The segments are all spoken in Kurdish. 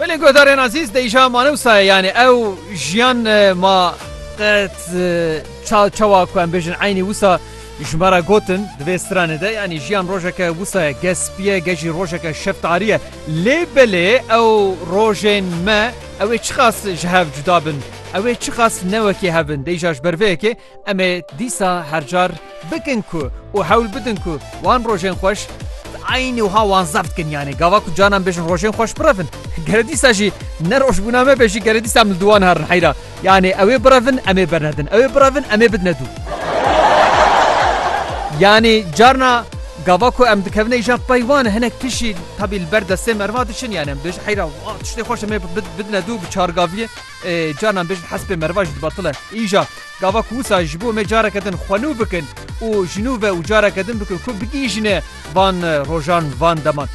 Belê guhdarên azîz deyja mane wisa ye yanî ew jiyan ma qet çawa ku em bêjin eynî wisa ji me re gotin di vê stranê de yanî jiyan rojeke wisa ye gespiye gejî rojeke şeftariye lê belê ew rojên me ew ê çiqas ji hev cuda bin ew ê çiqas newekê hebin deyja ji ber vê yekê Em ê dîsa her car bikin ku û hewl bidin ku wan rojên xweş bi eynî wiha wan zeft bikin. Yanî gava ku canan bêjin rojên xweş birevin. Gere dîsa jî ne rojbûna me be jî gere dîsa em li dû wan herin heyra. Yanî ewê birevin em ê bernedin. Ewê birevin em ê bidine dû. Yanî carna gava ku em dikevine îja pey wan hinek pişî tabî li ber destê me riva diçin. Yanî em dibêjin heyra wa tiştê xweş em ê bidine dû bi çargaviyê. Carnan bêjin hespê meriva jî dibatil e. Îja gava ku wisa ji bo me careke din xwe nû bikin û ji nû ve û careke din bikin ku bigihîjine van rojan van deman.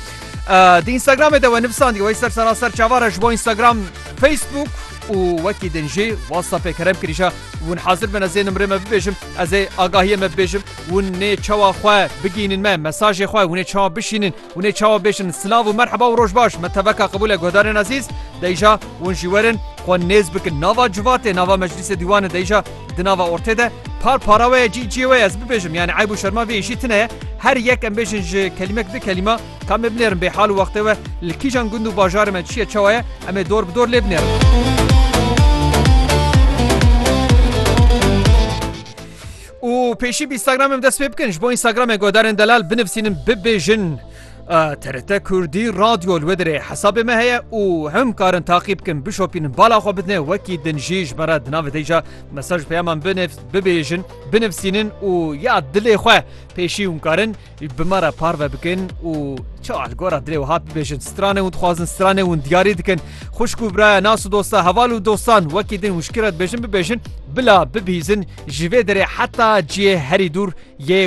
Di Instagramê de we nivîsandiye wey ser sera ser çavar e ji bo Instagram, Facebook û wekî din jî WhatsAppê kerem kirîja hûn hazir bine zê nimrê me bibêjim ez ê agahiyê me bibêjim hûn nê çawa xwe bigihînin me mesajê xwe hûnê çawa bişînin Hûn ê çawa bêjin silav û merheba û rojbaş me teveka qebûl e guhdarên ezîz, deyja hûn jî werin xwe nêz bikin nava civatê nava meclîsê dîwanê deyja di nava ortê de par para we ye cî ciyê we ye ez bibêjim yanî eyb û şerma vê îşî tune ye her yek em bêjin ji kelîmek di kelîma kam ê binêrin bê hal û wextê we li kîjan gund û bajarê me çi ye çawa ye em ê dor bi dor lê binêrin. Û pêşî bi Instagramê min dest pê bikin ji bo Instagramê guhdarên delal binivîsînin bibêjin TRT Kurdî radyo li wê dirê hesabê me heye û him karin taqî bikin bişopînin bala xwe bidinê wekî din jî ji me re di navê dê ca mesaj peyaman binêf bibêjin binivîsînin û ya dilê xwe pêşî hûn karin Bi me re parve bikin û çawa li gora dilê wiha bibêjin stranên wan dixwazin stranên wan diyarî dikin xwişk û biraya nas û dosta heval û dostan wekî din û ji kî re dibêjin bibêjin bila bibihîzin ji vê derê heta cihê herî dûr yê